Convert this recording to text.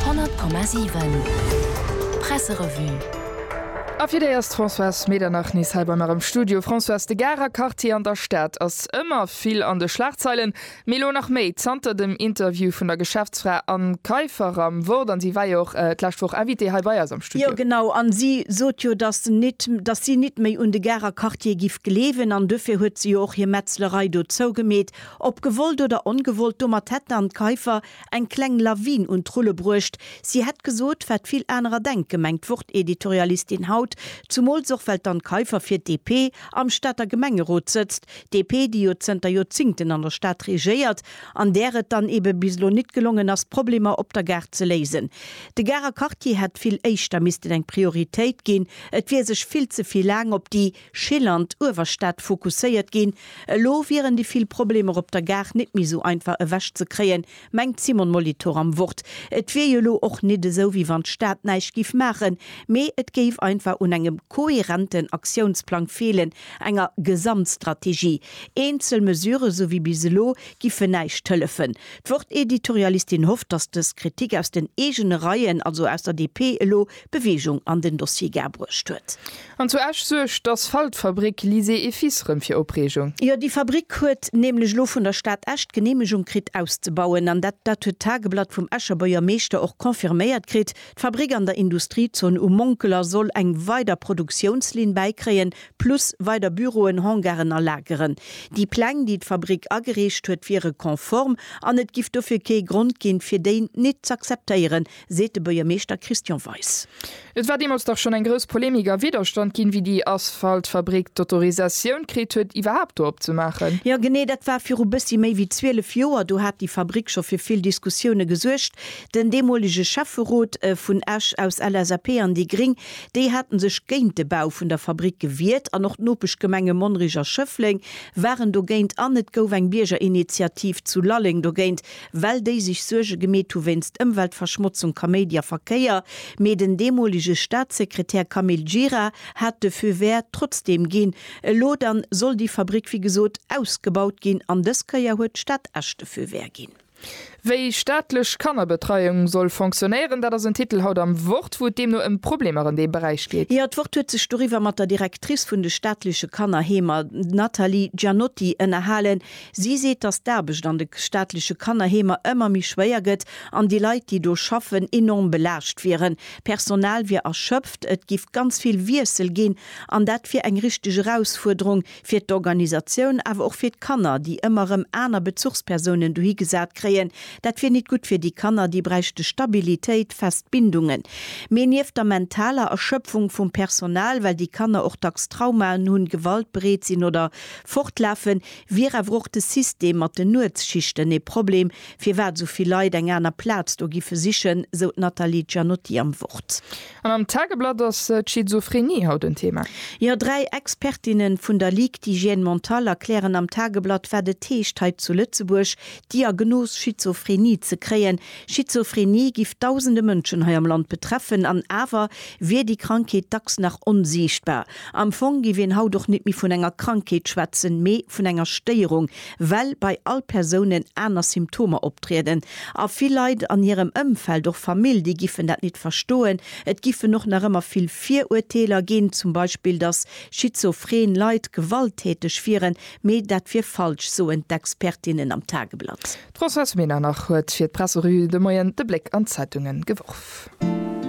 100,7 Presserevue A fir déi ass d'Françoise Medernach nees hei bei mer am Studio. Françoise, de Garer Quartier an der Stad ass ëmmer vill an de Schlagzeilen, mee elo nach méi zanter dem Interview vun der Geschäftsfra Anne Kaiffer am Wort. An si war jo och d'lescht Woch Invitée hei bei eis am Studio. Jo, genau. An si sot jo, dass nit, dass si nit méi un de Garer Quartier giff gleewen. An duerfir huet se jo och hir Metzlerei do zougemeet. Ob gewollt oder ongewollt, domat hätten an d'Keifer eng kleng Lawin un d'Rulle bruecht. Si hätt gesot, wat vill anerer denken, mengt d'Wort-Editorialistin haut, zumools och well d'An Keifer fir d'DP am Stater Gemengerot sëtzt, DP, déi jo zënter Joerzingten an der Stad regéiert an där et dann ebe bis elo nit gelongen ass, d'Problemer op der Gare ze léisen. De Garer Quartier hätt vill éischter missten eng Prioritéit ginn, et wier sech vill ze vill laang op déi. Schill an d'Uewerstad fokusséiert ginn. Elo wieren déi vill Problemer op der Gare net méi esou einfach ewech ze kréien, mengt d'Simone Molitor am Wort. Et wier jo elo och net esou, wéi wann d'Stad näischt géif maachen, mee et géif einfach un engem kohärenten Aktiounsplang feelen, enger Gesamtstrategie. Eenzel Mesure, esou wéi bis elo, giffen näischt hëllefen. D'Wort-Editorialistin hofft, datt dës Kritik aus den eegene Reien, also aus der DP, elo Bewegung an den Dossier Gare bruecht huet. An zu Esch suergt d'Asphaltfabrick Lysé et Fils rëm fir Opreegung. Jo, déi Fabrick huet nämlech elo vun der Stad Esch d'Geneemegung kritt auszebauen. An dat dat huet d'Tageblatt vum Escher Buergermeeschter och confirméiert kritt. D'Fabrick an der Industriezon Um Monkeler soll eng weider Produktiounslinn bäikréien, plus weider Büroen, Hangaren a Lageren. Déi Pläng, déi d'Fabrick agereecht huet, wiere konform an et giff dofir kee Grond ginn, fir déi nit z'akzeptéieren, seet de Buergermeeschter Christian Weis. Et war deemools dach schonn eng grouss Polemik a Widderstand ginn, wéi déi Asphaltfabrik d'Autorisatioun kritt huet, iwwerhaapt do opzemaachen. Jo, genee, dat war viru bëssi méi wéi 12 Joer. Do hat déi Fabrik scho fir vill Diskussioune gesuergt. Den deemolege Schäfferot vun Esch aus LSAP an déi gréng, déi hate sech géint de Bau vun der Fabrik gewiert an och d'Nopeschgemenge Monnerich a Schëffleng waren dogéint an et gouf eng Biergerinitiativ zu Lalleng dogéint. well déi sech Suerge gemeet hu wéinst Ëmweltverschmotzung, Kaméidi a Verkéier, mee den deemolege Staatssekretär Camille Gira hat de Feu vert trotzdeem ginn. Elo dann soll déi Fabrick wéi gesot ausgebaut ginn an dës Kéier huet d'Stad Esch de Feu vert ginn. Wéi staatlech Kannerbetreiung soll fonctionnéieren, dat ass en Titel haut am Wort, wou et deemno ëm Problemer an deem Beräich geet. Jo, d'Wort huet sech doriwwer mat der Directrice vun de staatleche Kannerheemer, d'Nathalie Gianotti, ënnerhalen. Si seet, datt d'Aarbecht an de staatleche Kannerheemer ëmmer méi schwéier gëtt an déi Leit, déi do schaffen, enorm belaascht wieren. D'Personal wier erschöpft, et géif ganz vill Wiessel ginn an dat wier eng richteg Erausfuerderung fir d'Organisatioun, awer och fir d'Kanner, déi ëmmer erëm aner Bezuchspersounen dohi gesat kréien. Dat wier nit gutt fir déi Kanner, déi bräichte Stabilitéit, fest Bindungen. Mee nieft der mentaler Erschöpfung vum Personal, well déi Kanner och dacks Traumaen hunn, Gewalt bereet sinn oder fortlafen, Wier awer och de System mat den Nuetsschichten ee Problem, firwat esou vill Leit eng aner Plaz do giffe sichen, sou d'Nathalie Gianotti am Wort. An am Tageblatt ass d'Schizophrenie haut en Thema. Jo, dräi Expertinne vun der Ligue d'hygiène mentale erklären am Tageblatt, wat et heescht hei zu Lëtzebuerg d'Diagnos Schizophrenie ze kréien. Schizophrenie giff dausende Mënschen hei am Land betreffen, an awer wier déi Krankheet dacks nach onsiichtbar. Am Fong giff een haut och nit méi vun enger Krankheet schwätzen, mee vun enger Stéierung, well bei all Persounen aner Symptomer optrieden. A vill Leit an hirem Ëmfeld, och Famill, déi giffen dat nit verstoen. Et giffen och nach ëmmer vill Viruerteeler ginn, zum Beispill dass schizophren Leit gewalttäteg wieren, mee dat wier falsch, soen d'Expertinnen am Tageblatt. D'Françoise Medernach huet fir d'Presserevue de Moien de Bléck an d'Zeitunge geworf.